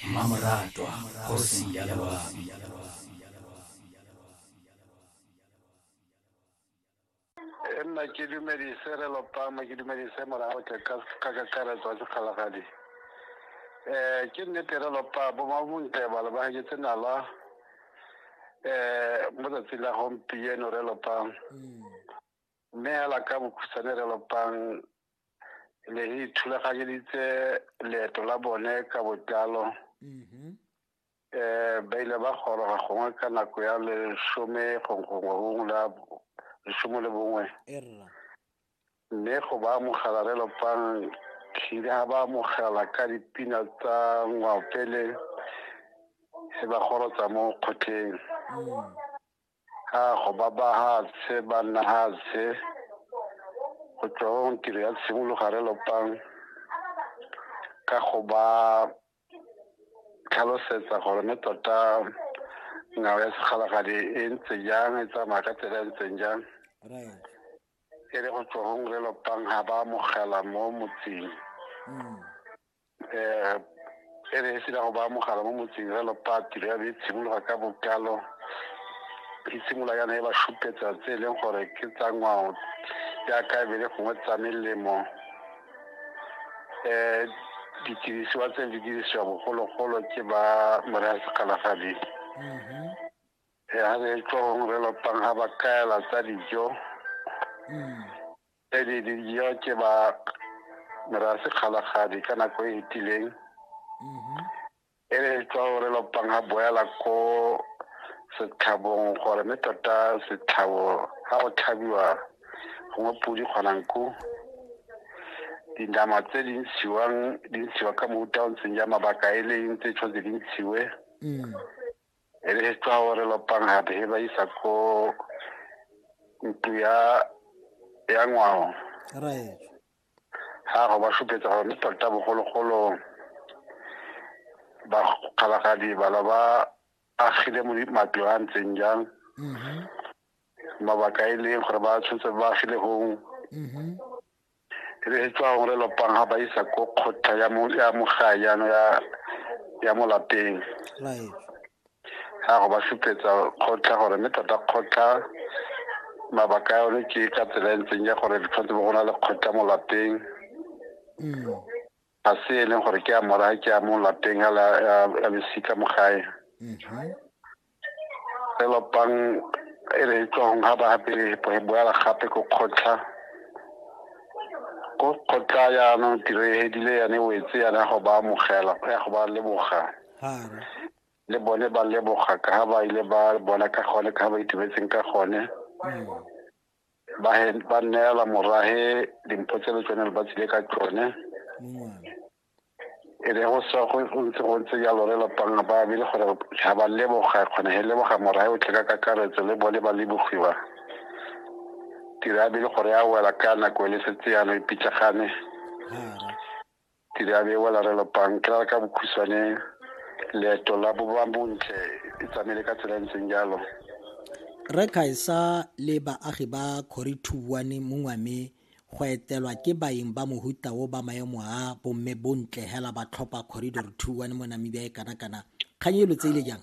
Mmamoratwa kgosi ya loapi. e nna ke dumedise re lopama ke dumedise morago tle ka ka kakaretso ya sekgalagadi um ke nnete re lopa bomabontle balo ba gaketse nala um mo tsatsing la gompieno re lopang Mme hela ka bokhutshwane re lopang le re ithulaganyeditse leeto la bone ka botlalo um ba ile ba goroga gongwe ka nako ya lesome gongwe gongwe la lesome le bongwe mme go ba amogela re lopang tlile ga ba amogela ka dipina tsa ngwaopele e ba gorotsa mo kgotleng mm. a go ba bahatshe ba nna hatshe go tswa go tiro ya tshimologare lopang ka go ba tlhalosetsa gore ne tota ngwao ya segalagadi e ntse jang e tsamaya ka tsela e ntseng jang e le go tswa go ngwe lopang ga ba amogela mo motseng mm. um e ne e sena go ba mogala mo motseng jalo patri ya be e tshimologa ka bokalo e simolola yana e ba šupetsa tse e leng gore ke tsa ngwao jaaka e be le gongwe tsa melemo um didirisiwa tse di dirisiwa bogologolo ke ba moraya segalagadi um ga re tswa gongwe re lopang ga ba kaela tsa dijo Pele dijo ke ba merase kgalagadi ka nako e e tileng mhm. e re tswa gore lopang ga boela ko setlhabong gore mme tota setlhabo ga go tlhabiwa gongwe podi kgonang ko dinama tse di ntshiwang di ntshiwa ka mofuta o ntseng ja mabaka e leng tse tshwanetse di ntshiwe mm. e re tsa gore lopang gape he ba isa ko ntu ya ya ngwao right ga go ba supetsa gore tota bogologolo ba kgalagadi bala ba agile mo matlo a ntseng jang mm-hmm. mabaka e leng gore ba tshwanetse ba agile gong mm-hmm. e be e tswa gore lopang ga ba isa ko kgotla ya mogae yano ya mo lapeng ga go ba supetsa kgotla gore mme tota kgotla mabaka a yone ke ka tsela e ntseng ya gore tshwanetse bo go na le kgotla mo lapeng mm. ga se e leng gore ke a mora ke a mo lapeng a losika mo gae mm-hmm. re lopang e re tswang ga ba gape re boela gape ko kgotlha ko kgotlha yaanong tiro e hedile yane wetse yana ya go ba amogela ya go ba leboga le bone ba leboga ka ga ba ile ba bona ka gone ka ga ba itumetseng ka gone mm. ba ba neela morahe dimpho tse le tsone le ba tsile ka tsone e re go sa go ntse go ntse jalo re lapang ba bile gore ga ba leboga kgona he leboga morahe o tle ka kakaretso le bone ba lebogiwa tira bile gore a wela ka nako e le setse yana e pitlagane Tiriabe wa larelo pang ke rara ka bokhutshwane leeto la boba bontle e tsamaile ka tsela e ntseng jalo re khaisa le baagi ba khori thuwane mo ngwame go etelwa ke baeng ba mohuta o ba maemo a bomme bontle hela ba tlhopha corridor thuwane mo namibia e kana kana kgang e lo tseile jang